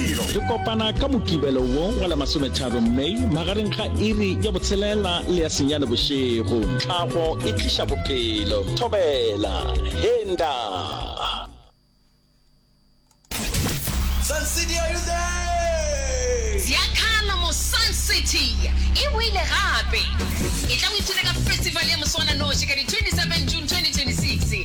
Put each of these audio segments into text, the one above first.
Re kopana ka Mokibelo wo wa la masometharo May magareng ga iri ya botshelela le ya senyane bošego. Tlhago e tliša bophelo. Thobela. He nda. Sun City, are you there? Ziakhala mo Sun City e boile gape. Etla o ithute ka festival ya moswananoši ka di 27 June 2026.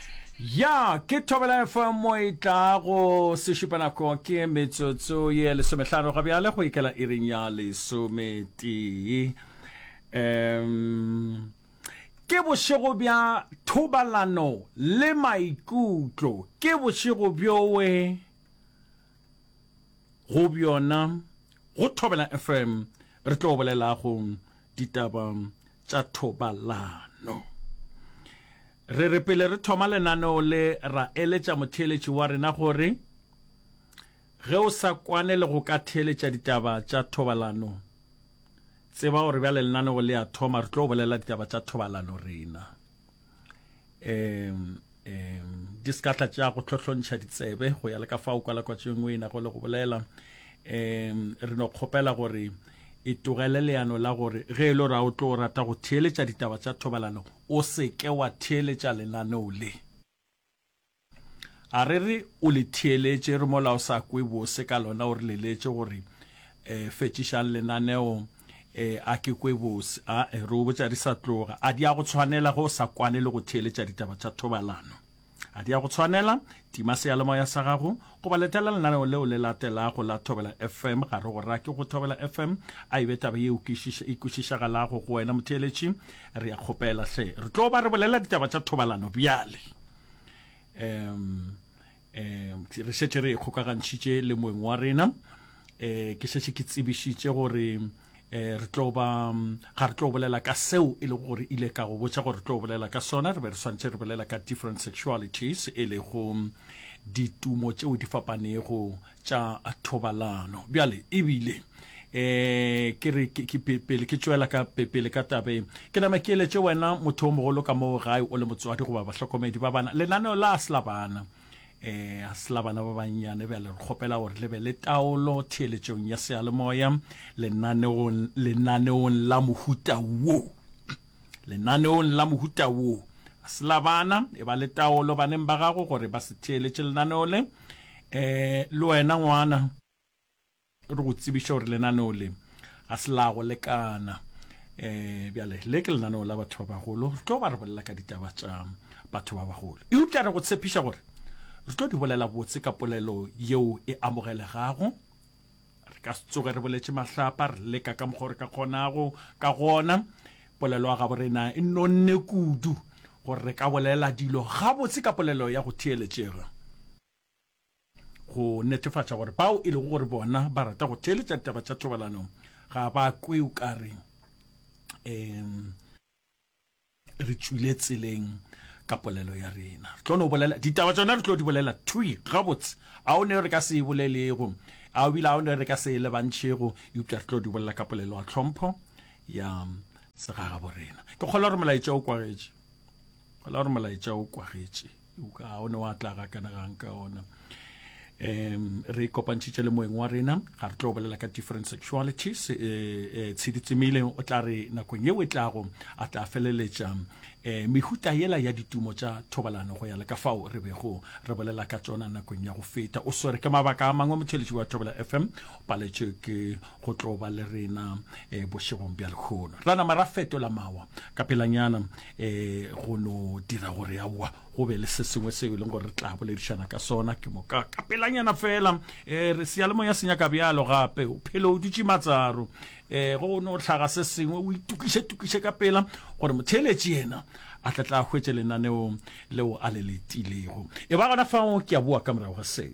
ya ke thobela fm mo e tlago sešupa nako ke metsotso ye lesomehlano ga bjale go ikela iring ya lesometee um ke bošego bja thobalano le maikutlo ke bošego bjowe go bjona go thobela fm re tlo bolelago ditaba tša thobalano Re re pele re thoma lenaneo le, ra eletša motheeletši wa rena gore ge o sa kwane le go ka theeletša ditaba tša thobalano, tseba gore bjale lenaneo le a thoma, re tlo bolela ditaba tša thobalano rena. Um, um, di se ka tla tša go hlohlontšha ditsebe go ya le ka fao kwalakwatšo e nngwe e nago le go bolela. Um, re no kgopela gore e togele leano la gore ge e le gore a o tlo rata go theeletša ditaba tša thobalano o se ke wa theeletša lenaneo le. A re re o le theeletše re mola o sa kwe bose ka lona o re leletše gore e fetšišang lenaneo e a ke kwe bose a re o botša di sa tloga a di a go tshwanela ge o sa kwane le go theeletša ditaba tša thobalano. A di a go tshwanela? Tima seyalemoya sa gago goba letela lenaneo leo le latelago la Thobela FM. Ga re go rake go Thobela FM. A e be taba ye e kwešišagalago go wena, motheeletši. Re a kgopela hle. Re tlo ba re bolela ditaba tša thobalano bjale. Um, um, re šetše re e kgokagantšhitše le moeng wa rena. Um, ke šetše ke tsebišitše gore eh, re tlo ba ga re tlo bolela ka seo e lego gore ile ka go botsa gore re tlo bolela ka sona re be re swantse re bolela ka different sexualities e lego ditumo tšeo di fapanego tša thobalano bjale ebile eh ke re ke pele ke tšwela ka pele ka tabe ke nama ke eletse wena motho o mogolo ka moo gae o le motswadi goba bahlokomedi ba bana lenaneo la sla bana eh a sela bana ba bannyane bjale re kgopela gore le be le taolo theeletšong ya seyalemoya lenaneong lenaneong la mohuta wo lenaneong la mohuta wo a sela bana e ba le taolo baneng ba gago gore ba se theeletše lenaneo le eh le wena ngwana re go tsebiša gore lenaneo le ga se la go lekana um bjale le ke lenaneo la batho ba bagolo re tlo ba re bolela ka ditaba tša batho ba bagolo eupša re go tshepiša gore re tlo di bolela botse ka polelo yeo e amogelegago re ka se tsoge re boletše mahlapa re leka ka mokgwa re ka kgonago ka gona polelo ya gabo rena e nonne kudu gore re ka bolela dilo gabotse ka polelo ya go theeletšega go netefatša gore bao e lego gore bona ba rata go theeletša taba tša thobalano ga ba kwe o kare um re tswile tseleng ka polelo ya rena re tlo no bolela ditaba tsona re tlo di bolela twi gabotse a o ne re ka se e bolelego a o bile a o ne re ka se e lebantšhego eupša re tlo di bolela ka polelo ya tlhompho ya segagabo rena ke kgola gore molaetša o kwagetše kgola gore molaetša o kwagetše ga o ne wa tla ga kana gang ka ona um re kopantšhitše le moeng wa rena ga re tlo bolela ka different sexualities um eh, eh, tshedi tsemile o tla re nakong yeo e tlago a tla feleletša um eh, mehuta yela ya ditumo tša thobalano go ya le ka fao re bego re bolela ka tsona nakong ya go feta o swere ke mabaka a mangwe motheletši wa thobela fm o paletše ke go tlo ba le rena um bošegong bja lekgono ra nama ra fetola mawa ka pelanyana um go no dira gore aowa go be le se sengwe seo e leng gore re tla boledišana ka sona ke moka ka pelanyana fela um re seyalemoya se nyaka bjalo gape o phelo o dutše matsaro um go no tlhaga se sengwe o itokišetokiše ka pela gore motheeletši yena a tla tla hwetše lenaneong leo a le letilego e ba gona fao ke a boa ka morago ga seo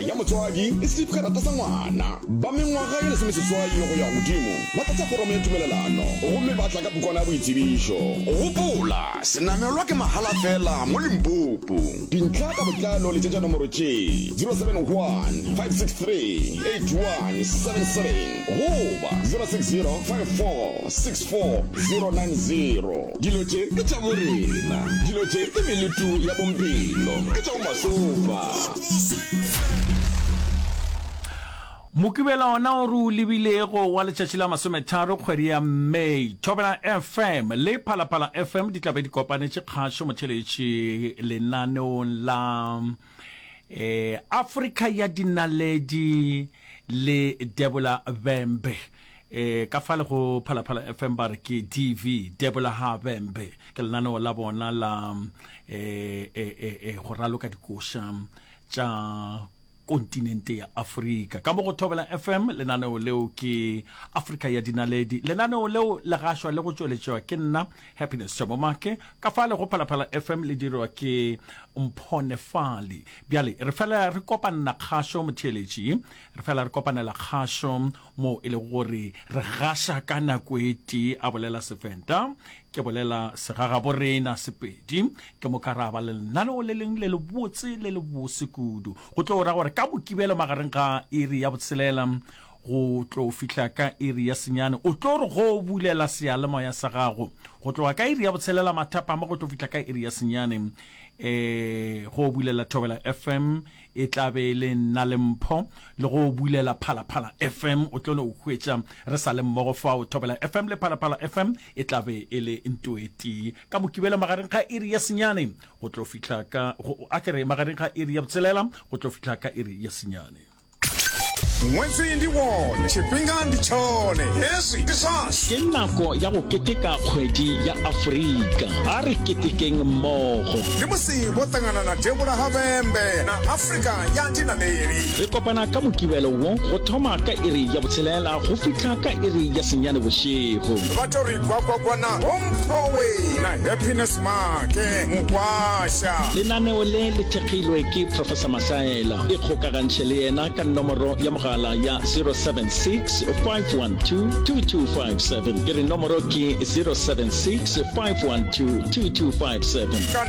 ya motswadi e slip karata sa ngwana ba mengwaga ye lesomeseswai go ya godimo ba tlatsa foromo ya tumelelano gomme ba tla ka pukwana ya boitsebišo. Gopola, senamelwa ke mahala fela mo Limpopo. Dintlha ka botlalo letšetša nomoro tše, 071-563-81777 goba 060-5464-090. Dilo tše ke tša borena, dilo tše ke meletu ya bompelo, ke tša bomasofa. mokibela ona o re o lebilego wa letšatši la masometharo kgwedi ya may thobela fm le phalaphala fm di tlabe di kopanetše kgašo motheletši lenaneong la um afrika ya dinaledi le debola bembe E, ka fale go Phalaphala FM ba re ke DV, Debola Ha Bembe, ke lenaneo la bona la e, e, e, e, go raloka dikoša tša kontinente ya afrika ka mo go thobela fm lenaneo leo ke afrika ya dinaledi lenaneo leo le gašwa le go tšweletšwa ke nna happiness tšamomake ka fa le go phalaphala fm le dirwa ke mphonefali bjale re fela re kopanna kgašo motheeletši re fela re kopanela kgašo moo e lego gore re gaša ka nako e tee, a bolela Sevenda. Ke bolela segagaborena, Sepedi. Ke moka ra ba le lenaneo le leng le lebotse le lebose kudu, go tlo ra gore ka Mokibelo magareng ga iri ya botshelela go tlo fihla ka iri ya senyane, o tlo re go bulela seyalemoya sa gago go tloga ka iri ya botshelela mathapama go tlo fihla ka iri ya senyane, um go bulela Thobela FM e tla be e le nna le Mpho le go bulela Phalaphala FM. O tlo no hwetša re sa le mmogo fao. Thobela FM le Phalaphala FM e tla be e le nto e tee ka Mokibelo magareng ga iri ya senyane go tlo fihla ka go a ke re magareng ga iri ya botshelela go tlo fihla ka iri ya senyane. Ṅwetsi ndi wo, tshifhinga ndi tshone, hezwi ndi zwashu. Ke nako ya go keteka kgwedi ya Afrika. A re ketekeng mmogo. Ke musi vho ṱangana na devhula ha vhembe na Afrika ya dinaleli. Re kopana ka Mokibelo wo go thoma ka iri ya botshelela go fihla ka iri ya senyane bošego. Ba tlo re gwagwagwana go Mphowe na Happiness Make Mokwasha. Lenaneo le le thekgilwe ke Professor Mahlaela. Ikgokagantšhe le yena ka nomoro ya mogala ya 076 512 2257. Ke re nomoro ke 076 512 2257.